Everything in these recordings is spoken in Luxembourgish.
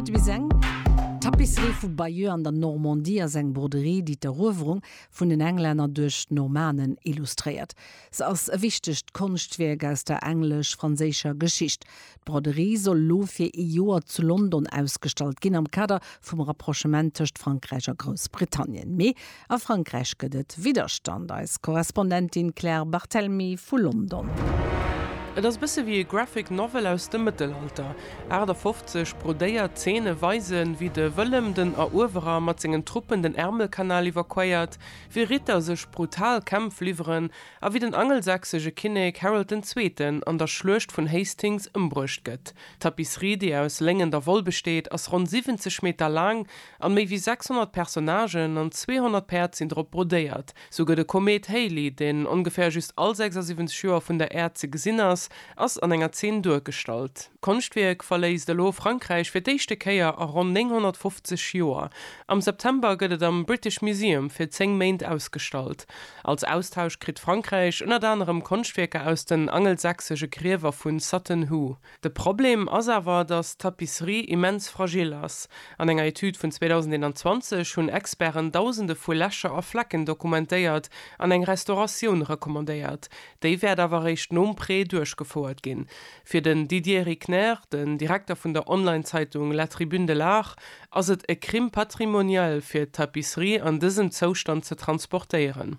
Et wiss eng Tapisserie vu Bayeux an der Normandie ass eng Broderie, déi d'Eruewerung vun den Englänner duerch d'Normanen illustréiert. Se ass e wichtegt Konschtwierk aus der englesch-franséischer Geschicht. D'Broderie soll elo fir ee Joer zu London ausgestallt ginn, am Kader vum Rapprochement tëscht Frankräich a Groussbritannien. Mee A Frankräich gëtt et Widderstand, eis Korrespondentin Claire Barthelmy vu London. Et ass e bësse wéi e Graphic Novel aus dem Mëttelalter. 58 brodéiert Zeene weisen, wéi de Wëllem den Eruewerer mat sengen Truppen den Ärmelkanal iwwerquéiert, wéi Ritter sech brutal Kämpf liwweren a wéi den angelsächsege Kinnek Harold den Zweeten an der Schluecht vun Hastings ëmbruecht gëtt. D'Tapisserie, déi aus Léng an der Woll besteet, ass ronn 70 Meter laang An méi wéi 600 Personnagen an 200 Päerd sinn drop brodéiert. Souguer de Komet Halley, deen ongeféier just all 76 Joer vun der Äerd ze gesinn ass, ass an enger Zeen duergestallt. D'Konschtwierk verléisst elo Frankräich fir d'éischte Kéier a ronn 950 Joer. Am September gëtt et am British Museum fir 10 Méint ausgestallt. Als Austausch kritt Frankräich ënnert anerem Konschtwierker aus den angelsächsege Griewer vu Sutton Hoo. De Problem ass awer, datt d'Tapisserie immens fragil ass. An enger Etüd vun 2021 hunn Experten Dausende vu Lächer a Flecken dokumentéiert an eng Restauratioun recommandéiert. Déi wäert awer eréischt nom Prêt duerchgefouert ginn. Fir den Didier Rickner, den Direkter vun der Online-Zeitung La Tribune de l'Art, ass et e Crime patrimonial fir d'Tapisserie an dësem Zoustand ze transportéieren.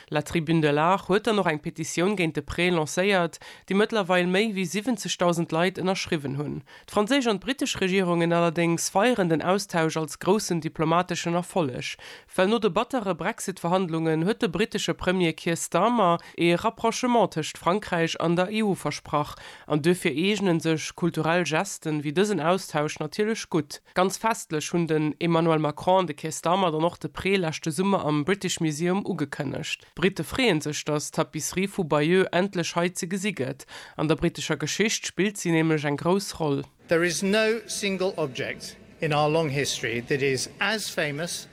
La Tribune de l'Art huet dann och eng Petitioun géint de Prêt lancéiert, déi mëttlerweil méi wéi 70.000 Leit ënnerschriwwen hunn. D'franséisch an d'brittesch Regierungen allerdéngs feieren den Austausch als groussen diplomateschen Erfolleg, well no de battere Brexit-Verhandlungen huet de brittesche Premier Keir Starmer ee Rapprochement tëscht Frankräich an der EU versprach an duerfir eegnen sech kulturell Gesten wéi dësen Austausch natierlech gutt. Ganz festlech hunn den Emmanuel Macron, de Keir Starmer dann och de Pré leschte Summer am British Museum ugekënnegt. D'Brite freeën sech, datt d'Tapisserie vu Bayeux endlech hei ze gesi gëtt. An der britescher Geschicht spillt si nämlech eng grouss Roll. There is no single object in our long history that is as famous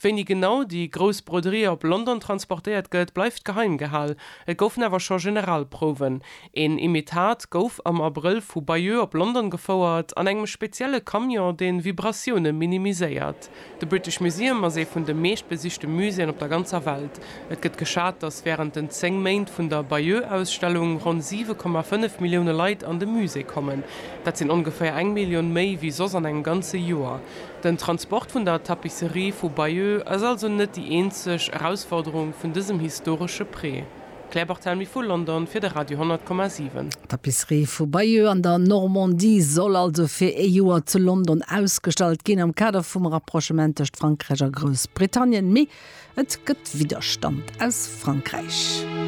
Wéini genau déi grouss Broderie op London transportéiert gëtt, bleift geheim gehal. Et goufen awer scho Generalprouwen. Een Imitat gouf am Abrëll vu Bayeux op London gefouert, an engem spezielle Camion, dee Vibratioune minimiséiert. De British Museum ass ee vun de meeschtbesichte Muséeën op der ganzer Welt. Et gëtt geschat, datt wärend den 10 Méint vun der Bayeux-Ausstellung ronn 7,5 Millioune Leit an de Musée kommen. Dat sinn ongeféier eng Millioun méi wéi soss an engem ganze Joer. Den Transport vun der Tapisserie vu Bayeux ass also net déi eenzeg Erausforderung vun dësem historesche Prêt. Claire Barthelmy vu London fir de Radio 10,7. D'Tapisserie vu Bayeux an der Normandie soll also fir ee Joer zu London ausgestallt ginn, am Kader vum Rapprochement tëscht Frankräich a Groussbritannien. Mee et gëtt Widderstand aus Frankräich.